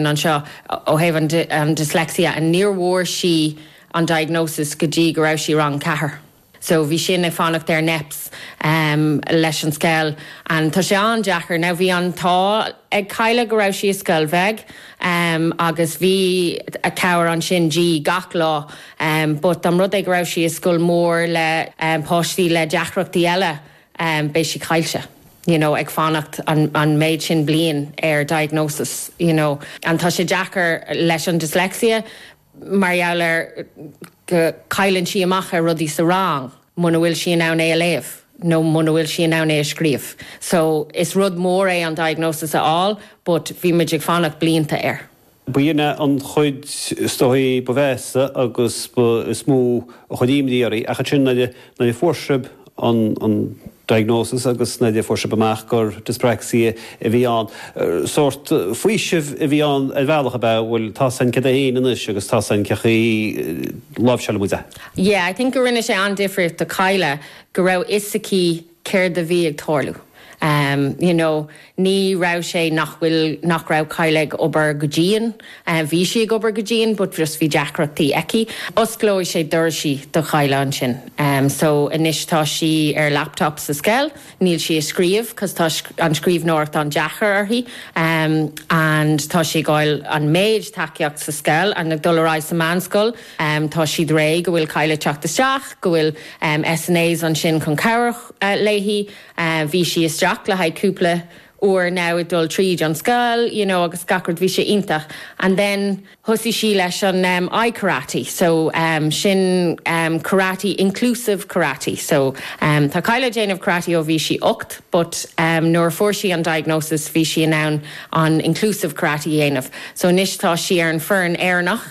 anseo ó thaobh an dyslexia and ní bhfuair sí an diagnosis go dtí go raibh sí i rang a ceathair so bhí sin ag fanacht ar NEPS leis an scoil and tá sé an-deacair now bhí an t-ádh ag Kyla go raibh sí i scoil bheag agus bhí an chabhair ansin di gach lá but an rud é dá raibh sí i scoil mór le páistí le deacrachtaí eile em, beidh sí caillte. You know, ag fanacht an, an méid sin bliain ar diagnosis, you know. And tá sé deacair leis an dyslexia mar gheall ar go, cailleann sí amach ar rudaí sa rang muna bhfuil sí in ann é a léamh nó muna bhfuil sí in ann é a scríobh. So, is rud mór é an diagnosis a fháil but bhí muid ag fanacht blianta air. B'shin é an chuid is dóichí ba mheasa agus ba mhó a chuir imní oraibh. Ach ansin nuair a fuair sibh an diagnosis agus nuair a fuair sibh amach gur dyspraxia a bhí ann, sórt faoiseamh a bhí ann ar bhealach, ab ea? Bhuel, tá a fhios againn cad é féin anois agus tá a fhios againn cén chaoi a láimhseálfaimid é. Yeah, I think go rinne sé an-difríocht do Kyla go raibh fhios aici céard a bhí ag tarlú you know ní raibh sé nach bhfuil nach raibh Kyla ag obair go dian bhí sí ag obair go dian but just bhí deacrachtaí aici. D'oscail sé doirse do Kyla ansin so anois tá sí ar laptop sa scoil níl sí ag scríobh cos tá an scríbhneoireacht an-deacair uirthi and tá sí ag fháil an méid tacaíocht sa scoil and ag dul ar aghaidh sa meánscoil. Tá siad réidh, go bhfuil Kyla ag teacht isteach, go bhfuil SNAs ansin chun cabhrú léi. Bhí sí isteach le haghaidh cúpla uair now ag dul tríd an scoil you know agus gach rud bhí sé iontach and then thosaigh sí leis an I karate so sin karate inclusive karate so tá Kyla ag déanamh karate ó bhí sí ocht but nuair a fuair sí an diagnosis bhí sí in ann an inclusive karate a dhéanamh so anois tá sí ar an foireann Éireannach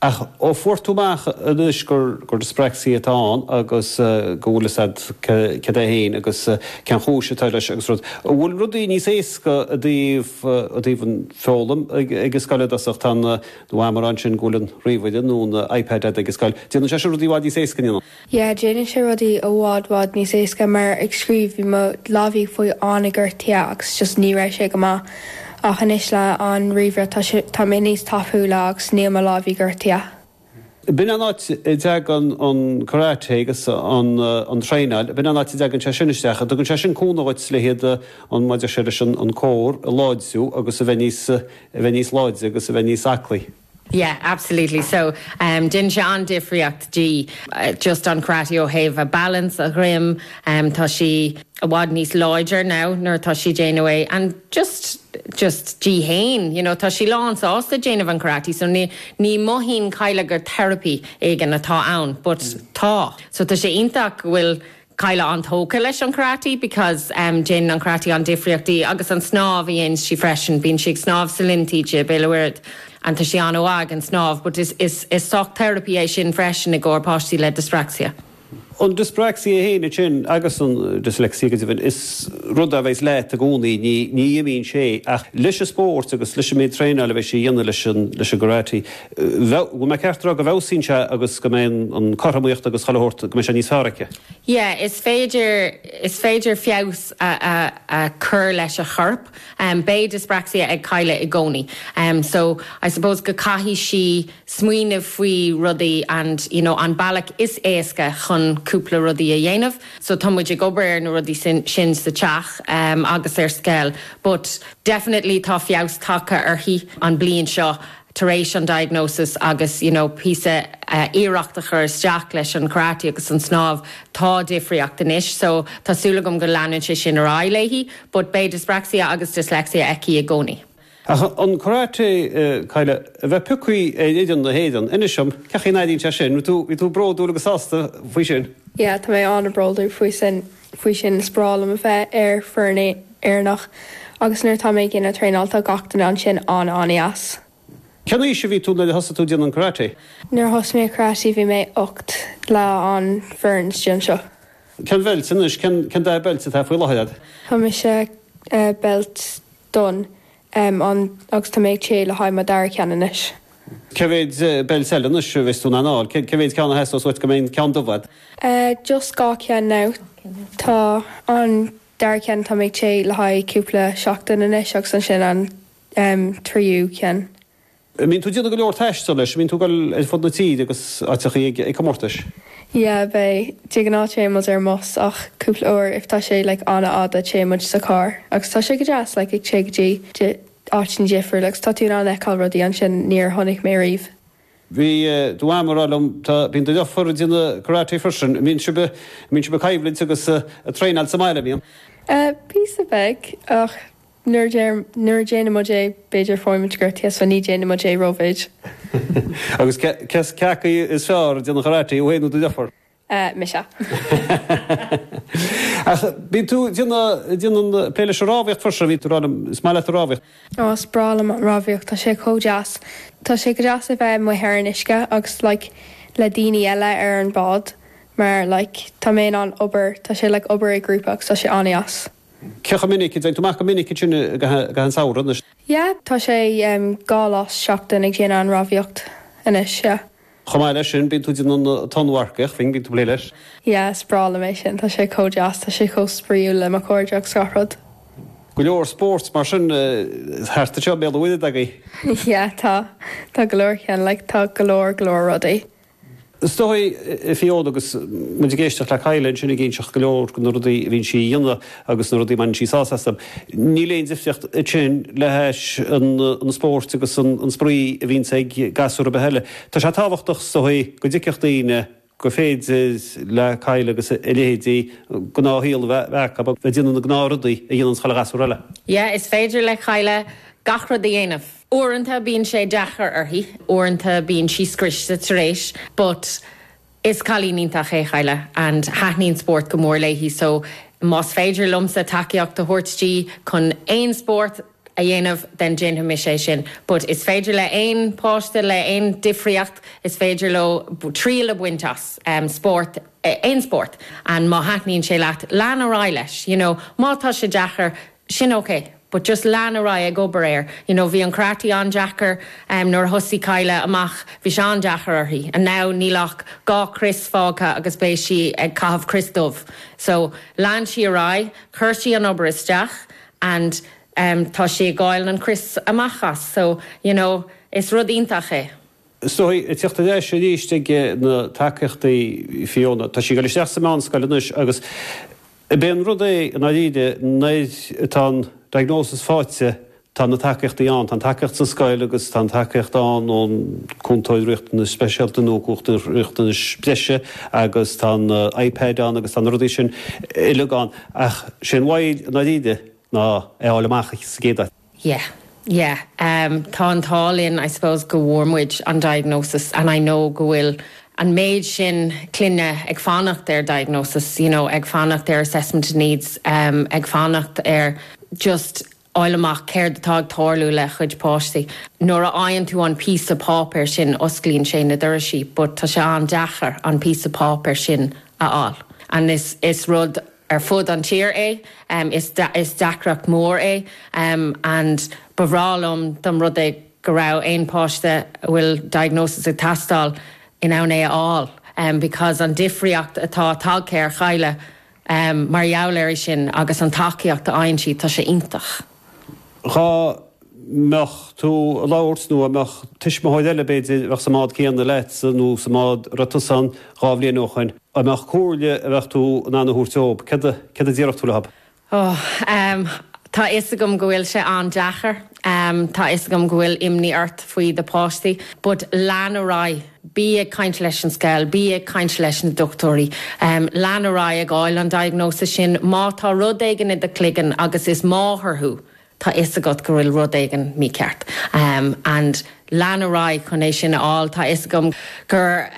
Ach ó fuair tú amach anois gur dyspraxia atá ann agus go bhfuil fhios agat cad é féin agus cén chúis atá leis agus rud, an bhfuil rudaí níos éasca i dtaobh an foghlaim ag an scoil i dtosach? Tá an abraimis ansin go bhfuil an ríomhaire nó an iPad ag an scoil, déanann sé sin rudaí i bhfad níos éasca, an ndéanann? Yeah, déanann sé rudaí i bhfad bhfad níos éasca mar ag scríobh bhí mo lámhaí ag fáil an-gortaithe agus just ní raibh sé go maith ach anois le an ríomhaire tá sé, tá mé níos tapúla agus níl mo lámhaí gortaithe. B'in an áit a dteagann an karate agus an traenáil, b'in an áit a dteagann sé sin isteach. An dtugann sé sin cúnamh dhuit leis an, maidir leis an an core a láidriú agus a bheith níos, a bheith níos láidre agus a bheith níos aclaí? Yeah, absolutely. So, um, déanann sé an-difríocht di, just an karate ó thaobh a balance, a greim, um, tá sí i bhfad níos láidre now nuair atá sí ag déanamh é and just, just di fhéin, you know, tá sí lán sásta déanamh an karate so ní, ní mothaíonn Kyla gur therapy éigin atá ann but tá. So tá sé iontach go bhfuil Kyla an-tógtha leis an karate because em déanann an karate an-difríocht di agus an snámh a dhéanns sí freisin. Bíonn sí ag snámh sa linn taoide, Béal Feirste. And tá sí an-mhaith ag an snámh but is is sórt therapy é sin freisin i gcomhair páistí le dyspraxia. An dyspraxia fhéin ansin agus an dyslexia go deimhin is rud a bheidh leat i gcónaí ní ní imíonn sé ach leis an spórt agus leis an méid traenáil a bheidh sí a dhéanamh leis an leis an karate Bheadh. An mbeadh sé ceart a rá go bhfeabhsaíonn sé agus go mbeidh an cothromaíocht agus chuile shórt, go mbeidh sé níos fearr aici. Yeah, is féidir, is féidir feabhas a, a, a chur leis an chorp. Beidh dyspraxia ag Kyla i gcónaí. So, I suppose go caithfidh sí smaoineamh faoi rudaí and you know an bealach is éasca chun cúpla rudaí a dhéanamh. So tá muid ag obair ar na rudaí sin, sin sa teach agus ar scoil but definitely tá feabhas tagtha uirthi an bliain seo. tar éis an diagnosis agus you know píosa iarracht a chur isteach leis an karate agus an snámh tá difríocht anois so tá súil agam go leanann sé sin ar aghaidh léi but beidh dyspraxia agus dyslexia aici i gcónaí. Ach an karate Kyla a bheith pioctha ar fhoireann na hÉireann inis dom cén chaoi an airíonn sé sin bhí tú bhí tú bródúil agus sásta faoi sin? Yeah tá mé an-bhródúil faoi sin. faoi sin, is breá liom a bheith ar foireann Éireannach agus nuair atá mé ag déanamh traenáil tá gach duine ansin an-an-dheas. Cén aois a bhí tú nuair a thosaigh tú déanamh an karate? Nuair a thosaigh mé karate bhí mé ocht leis an fhoireann stiontsioch. Cén beilt, anois cén dath beilt atá faoi láthair agat? Tá mise beilt donn em an agus tá mé ag téigh le haghaidh mo dara ceann anois. Cé mhéid belts eile anois a bheas tú in ann a fháil? Cé cé mhéid ceann a theastósas uait go mbeidh an ceann dubh agat? Eh just dhá cheann now. Tá an dara ceann tá mé ag téigh le haghaidh cúpla seachtain anois agus ansin an em tríú ceann. An mbíonn tú ag déanamh go leor taistil leis? An mbíonn tú ag dul ar fud na tíre agus áiteachaí ag comórtais? Yeah, bíonn. De gnáth téann muid ar an mbus ach cúpla uair if tá sé like an-fhada téann muid sa charr agus tá sé go deas like ag téigh go dtí áiteanna difriúil agus tá tú in ann fheiceáil rudaí ansin níor chonaic mé ariamh. Bhí do mham ag rá liom tá, bíonn do dheirfiúr ag déanamh karate freisin. An mbíonn sibh, an mbíonn sibh ag coimhlint agus ag traenáil sa mbaile, an mbíonn? Eh, píosa beag ach. Nuair a déanann muid é, b'fhéidir faigheann muid gortaithe, so ní déanann muid é rómhéad. Agus cé acu is fearr ag an karate, thú féin nó do dheirfiúr? Mise. Ach bíonn tú ag déanamh plé leis an rámhaíocht freisin, bhí tú rá liom, is maith leat an rámhaíocht. Ó, is breá liom an rámhaíocht, tá sé chomh deas. Tá sé go deas a bheith amuigh ar an uisce agus like le daoine eile ar an bád mar like tá mé in ann obair, tá sé like obair i grúpa agus tá sé an-deas. Cé chomh minic a dtéann tú amach, cé chomh minic ansin i gcaitheamh an tsamhraidh? Yeah, tá sé dhá lá sa seachtain ag déanamh an rámhaíocht anois, yeah. Chomh maith leis sin, bíonn tú ag déanamh an tonnmharcaíocht, freisin, bíonn tú ag plé leis. Yeah, is breá liom é sin, tá sé chomh deas, tá sé chomh spraoiúil le mo chairde agus gach rud. Go leor spórt mar sin thart anseo i mBéal an Mhuirthead agaibh? Yeah, tá, tá go leor ceann, like tá go leor go leor rudaí. Is dóigh, a Fiona, agus muid ag éisteacht le Kyla ansin ag inseacht go leor de na rudaí a bhíonn sí a dhéanamh agus na rudaí a mbaineann sí sásamh astu, níl aon difríocht ansin le hais an spórt agus an spraoi a bhíonns ag gasúr ar bith eile. Tá sé tábhachtach, is dóigh, go dtuigfeadh daoine gur féidir le Kyla agus a leithéidí gnáthshaol a bheith acu agus iad ag déanamh na ngnáthrudaí a dhéananns chuile ghasúr eile. Yeah, is féidir le Kyla gach rud a dhéanamh. Uaireanta bíonn sé deacair uirthi, uaireanta bíonn sí scriosta tar éis but is cailín iontach é Kyla and taitníonn spórt go mór léi so más féidir liomsa tacaíocht a thabhairt di chun aon spórt a dhéanamh then déanfaidh mise é sin but is féidir le aon páiste le aon difríocht is féidir leo triail a bhaint as spórt aon spórt and má thaitníonn sé leat lean ar aghaidh leis you know má tá sé deacair sin ok but just lean ar aghaidh ag obair air you know bhí an karate an-deacair em nuair a thosaigh Kyla amach bhí sé an-deacair uirthi and now níl ach dhá chrios fágtha agus beidh sí ag caitheamh crios dubh so lean sí ar aghaidh chuir sí an obair isteach and em tá sí ag fáil na crios amach as so you know is rud iontach é. Is dóigh, ag teacht ar ais arís ag na tacaíochtaí Fiona, tá sí ag dul isteach sa mheánscoil anois agus b'fhéidir an rud é i ndáiríre, nuair atá an diagnosis faighte, tá na tacaíochtaí ann, tá an tacaíocht sa scoil agus tá an tacaíocht ann ón cúntóir riachtanais speisialta nó cúntóir riachtanais breise agus tá an iPad ann agus tá na rudaí sin uilig ann ach sé an mhoill i ndáiríre ná é a fháil amach sa gcéad áit. Yeah. Yeah. Em, tá an t-ádh linn, I suppose, go bhfuair muid an diagnosis and I know go bhfuil an méid sin clainne ag fanacht ar diagnosis, you know, ag fanacht ar assessment of needs, em, ag fanacht ar just fháil amach céard atá ag tarlú le a gcuid páistí. Nuair a fhaigheann tú an píosa páipéir sin osclaíonn sé na doirisí but tá sé an-deacair an píosa páipéir sin a fháil and is, is rud, ar fud an tír é. Is deacracht mór é and ba bhreá liom dá mba rud é go raibh aon páiste a bhfuil diagnosis ag teastáil in ann é a fháil because an difríocht atá tagtha ar Chadhla mar gheall ar é sin agus an tacaíocht a fhaigheann siad tá sé iontach. Dhá mbeadh tú ag labhairt nó a mbeadh tuismitheoir eile b'fhéidir a bheadh sa mbád céanna leatsa nó sa mbád a raibh tusa ann dhá bhliain ó shoin, an mbeadh comhairle a bheadh tú in ann a thabhairt dóib? Céard a, céard a déarfadh tú leob? Ó, ehm, tá a fhios agam go bhfuil sé an-deacair. Ehm, tá a fhios agam go bhfuil imní ort faoi do pháistí. But lean ar aghaidh. Bí ag caint leis an scoil, bí ag caint leis na dochtúirí. Lean ar aghaidh ag fháil an diagnosis sin. Má tá rud éigin i do chloigeann agus is máthair thú, tá 'fhios agat go bhfuil rud éigin mícheart. And lean ar aghaidh chun é sin a fháil. Tá 'fhios agam gur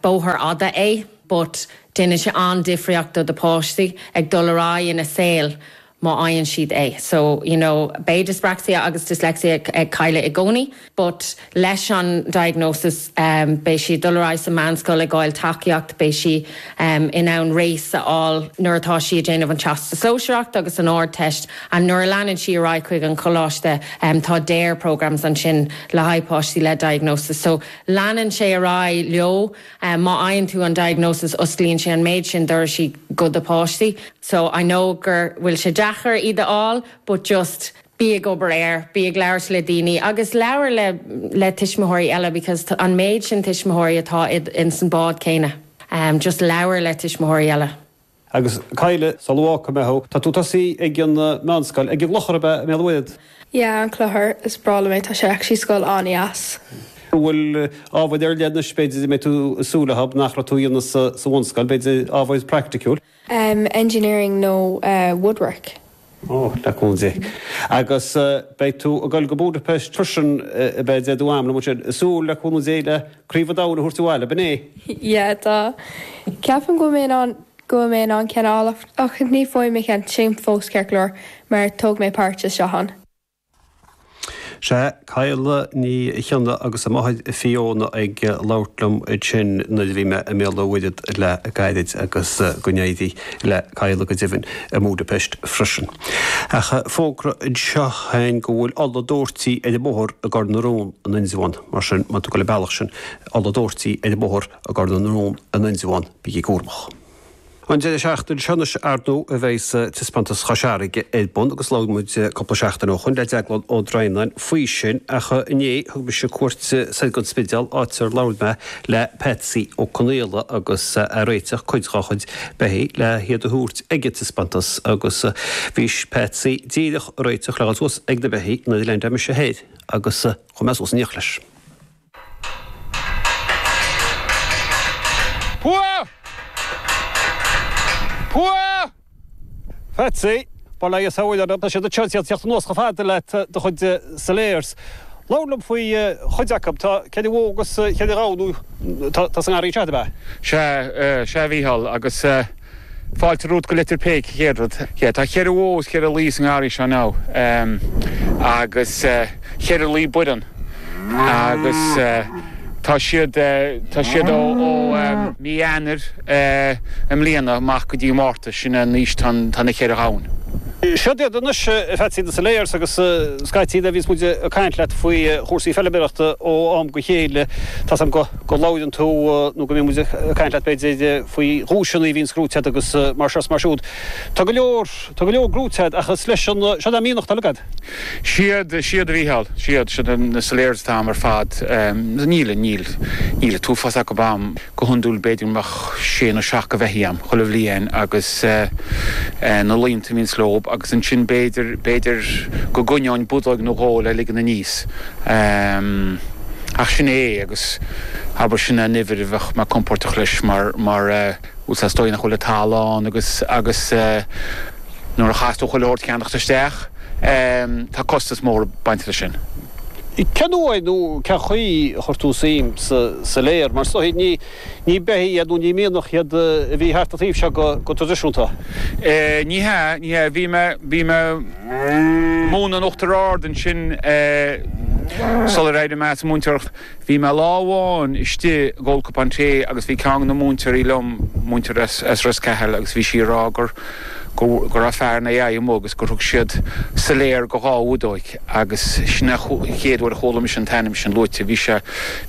bóthar fhada é but déanann sé an-difríocht do do páistí ag dul ar aghaidh ina saol. má fhaigheann siad é. So, you know, beidh dyspraxia agus dyslexia ag Cadhla i gcónaí but leis an diagnosis beidh sí ag dul ar aghaidh sa mheánscoil, ag fháil tacaíocht, beidh sí in ann RACE a fháil nuair atá sí ag déanamh an Teastais Sóisearach agus an Ardteist and nuair a leanann sí ar aghaidh chuig an choláiste tá DARE programmes ansin le haghaidh páistí le diagnosis. So leanann sé ar aghaidh leo. Má fhaigheann tú an diagnosis osclaíonn sé an méid sin doirsí go do páistí so I know gur bhfuil sé deacair iad a fháil but just bí ag obair air, bí ag labhairt le daoine agus labhair le le tuismitheoirí eile because an méid sin tuismitheoirí atá ins an bád céanna just labhair le tuismitheoirí eile. Agus Cadhla, sul má fhágfaidh mé thú. Tá tú tosaithe ag an meánscoil. Ag an gClochar ab ea i mBéal an Mhuirthead? Yeah, an Clochar. Is breá liom é. Tá sé actually scoil an-deas. An bhfuil ábhair ar leith anois b'fhéidir a mbeidh tú ag súil leob nach raibh tú a dhéanamh sa bhunscoil, b'fhéidir ábhair practiciúil? Engineering nó woodwork. Ó, le cúnamh Dé. Agus beidh tú ag dul go Budapest freisin, a bheidh dead uaim, nó muid ag súil, le cúnamh Dé, le Craobh an Domhain a thabhairt abhaile, ab in é? Yeah, tá. Ceapaim go mbeidh mé in ann, go bhfuil mé in ann, ceann a fháil, ach ní faigh mé ceann, táim fós ceart go leor, mar tóg mé páirt i seo an. Sea, Cadhla Ní Chionnaith agus a máthair Fiona ag labhairt liom ansin nuair a bhí mé i mBéal an Mhuirthead le gairid agus go n-éirí le Cadhla go deimhin i mBúdaipeist freisin. Ach fógra anseo againn go bhfuil ola doirte ar an mbóthar i gCor na Rón in Indreabhán, mar sin má tá tú ag gabháil an bealach sin, ola doirte ar an mbóthar i gCor na Rón in Indreabhán, bígí cúramach. An deireadh seachtaine seo anois ar ndú a bheidh Taispeántas Chois Fharraige ar bun agus labhair muid cúpla seachtain ó shoin le Deaglán Ó Droighneáin faoi sin ach inné thug mise cuairt soir gon Spidéal áit ar labhair mé le Patsy Ó Conaola agus é a réiteach cuid dá chuid beithigh le hiad a thabhairt ag an Taispeántas agus bhí Patsy díreach a réiteach le dhul suas ag na beithigh nuair a leaindeáil mise thoir agus chuaigh mé suas in éineacht leis. Patsy, bail ó Dhia ort. Tá muid tar éis a thíocht anuas chomh fada le do chuid Salers. Labhair liom faoi chuid acu. Tá cheithre bhó agus cheithre ghamhain atá sa ngarraí seo, ab ea? Sea, sea a Mhícheáil agus. Fáilte romhat go Leitir Péic, an chéad rud. Yeah, tá cheithre bhó is cheithre laoi sa ngarraí seo now, ehm, agus eh, cheithre laoi buireann, agus eh, tá siad eh, tá siad ó, ó ehm, mí Eanáir eh, i mbliana amach go dtí Márta, sin an aois atá, atá na ceithre ghamhain. Seo iad anois, a Pheatsaí na Salers, agus scaití nuair a bhíos muid ag caint leat faoi chúrsaí feilméarachta ó am go chéile, tá's am go. go labhrann tú nó go mbíonn muid ag caint leat b'fhéidir faoi dhuaiseanna a bhíonns gnóite a'd agus mar seo is mar siúd. Tá go leor, tá go leor gnóite a'd ach Salers, an siod an mianach atá agad? Siod, siod a Mhícheáil, siod, siod na Salers atá a'm ar fad. Níl, níl, níl an t-uafás acub a'm. Go hiondúil b'fhéidir go mbeadh sé nó seacht go bheithígh a'm chuile bhliain agus na laonta a bhíonns leob agus ansin b'fhéidir, b'fhéidir go gcoinneoinn budóig nó dhó le ligean aníos. Ach sin é é agus abair sin an uimhir a bheadh mé compóirteach leis mar, mar eh, is dóigh nach bhfuil an talamh ann agus, agus eh, nuair a chaitheas tú chuile shórt a cheannacht isteach, em, tá costas mór ag baint leis sin. Cén uair nó cén chaoi ar chuir tú suim sa Saler mar, is dóigh, ní. Ní beithígh iad nó ní mianach iad a bhí thart an taobh seo go traidisiúnta. Ní hea, ní hea. Bhí mé, bhí mé ag múineadh in Uachtar Ard ansin sular éirigh mé as an múinteoireacht. Bhí mé lá amháin istigh ag ól cupán tae agus bhí ceann de na múinteoirí liom, múinteoir as Ros Cathail, agus bhí sí ag rá gur, gur, go raibh fear an AI amuigh agus gur thug siad Saler go dhá bhudóig. agus sin an chéad uair a chuala mise an t-ainm sin luaite. Bhí sé,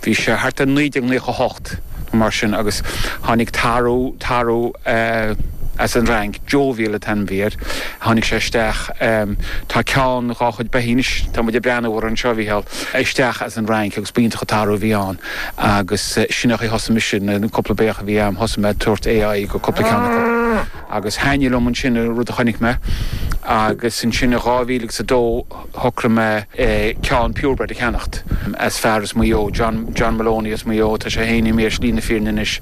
bhí sé thart ar 1998 nó mar sin agus tháinig tarbh, tarbh as an Fhrainc, Jovial an t-ainm a bhí air, tháinig sé isteach, tá ceann dhá chuid beithígh anois, tá muid ag breathnú orthu anseo, Mhícheál, isteach as an Fhrainc agus ba iontach an tarbh a bhí ann agus sin é thosaigh mise, na cúpla beithíoch a bhí a'm thosaigh mé ag tabhairt AI go cúpla ceann acu. Agus thaitnigh liom ansin an rud a chonaic mé agus ansin i 2000 agus a dó shocraigh mé ceann purebred a cheannacht as fear as Maigh Eo, John, John Maloney as Maigh Eo, tá sé féin i mbéal slí na fírinne anois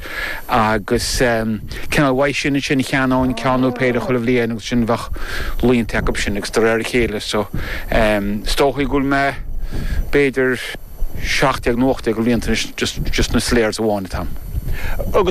agus cineál uaidh sin ansin cheannóinn ceann nó péire chuile bhliain agus ansin bheadh laonta acu sin agus de réir a chéile so is dóichí go bhfuil b'fhéidir seacht déag nó ocht déag laonta anois just, just na Salers amháin atá agam. Agus